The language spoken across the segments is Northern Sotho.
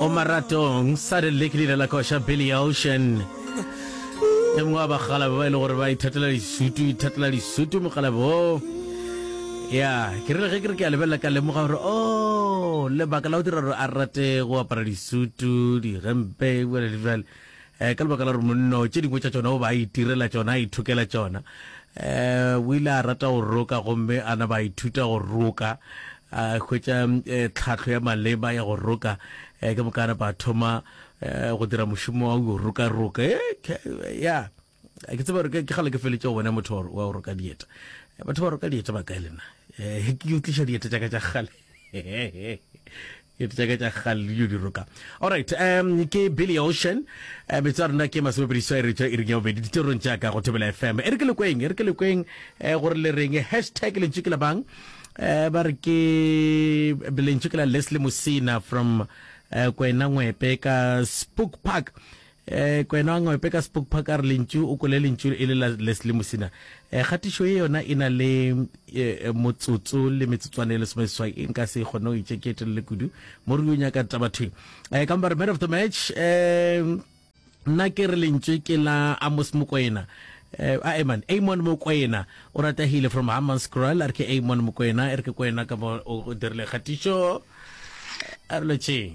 o maratong. Sudden League le ile la koša Billy Ocean, e mongwe wa bakgalabe ba e le gore ba ithatela disutu, ithatela disutu mokgalabe woo. Ya, ke rile ge ke re ke a lebelela ka lemoga gore o lebaka la go dira gore a rate go apara disutu, digempe, bjale le bjale. Eh, ka lebaka la gore monno tše dingwe tša tšona o ba a itirela tšona, a ithokela tšona. Eh, o ile a rata go roka gomme a naba a ithuta go roka, a hwetša eh, tlhahlo ya maleba ya go roka. Eh, ka moka a napa a thoma eh, go dira mošomo wa go roka-roka. Eh, ke- ya Eh, ke tseba gore ke ke kgale ke feletše go bona motho wa go- wa go roka dieta. Eh, Batho ba roka dieta ba kae le nna? Eh, Ke yo tliša dieta tša ka tša kgale. ke tseka tša galio di roka alright um ke billy ocean um metso a rona ke masomepediso e re tswa e reng ya bobedi ditirong jaaka go thobela fm e re ke lekweng e re ke lekweng um gore le reng hashtag lentšu ke la bang um ba re ke lentšu ke la leslie mosina from um kwena ngwepe ka spook park Eh, Kwena wa Ngwepe ka Spook Park a re lentšu o kole lentšu e le la Leslie Mosina. Eh, kgatišo ye yona e na le eh, eh, motsotso le metsotswana e lesome seswai e nka se e kgone go itše ke e telele kudu mo re yo nyaka tabathweng. Eh, ka mpa re man of the match eh, nna ke re lentswe ke la amos mokwena eh, a eman amon mokwena o ratagile from haman scroll a re ke amon mokwena e re ke kwena ka mo o o dirile kgatišo a re lotšeng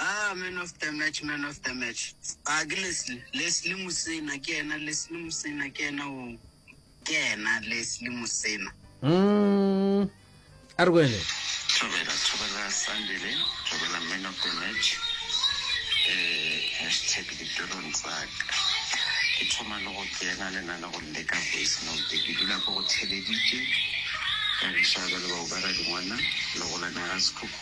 Ah, man of the match, man of the match. Ah, ke Leslie. Leslie Mosena, ke yena. Leslie Mosena, ke yena o. Ke yena, Leslie Mosena. Mm. A re kwele. Thobela, thobela Sandile, thobela man of the match. Eh, hashtag ditorong tsaka. Ke thoma le go kena le na le go leka voice note. Ke dula ko go theleditše. Ka rešaga le bao ba ra dingwana, le go lana ga sekhukhu.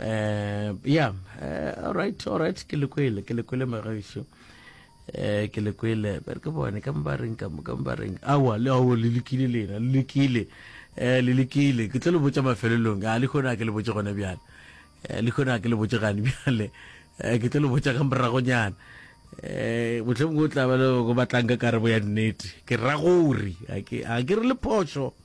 eh yeah eh, all right all right ke le kwele ke le kwele magaisho eh ke le kwele ba re ke bone ka mba reng ka ka mba reng awa le awo le lekile lena le lekile eh le lekile ke tlo le botsa mafelelong a le khona ke le botsa gone bjale eh le khona ke le botsa gane bjale eh ke tlo le botsa ka moragonyana eh botlhong go tla ba le go batlang ka karabo ya nnete ke ragori a ke a ke re le phoso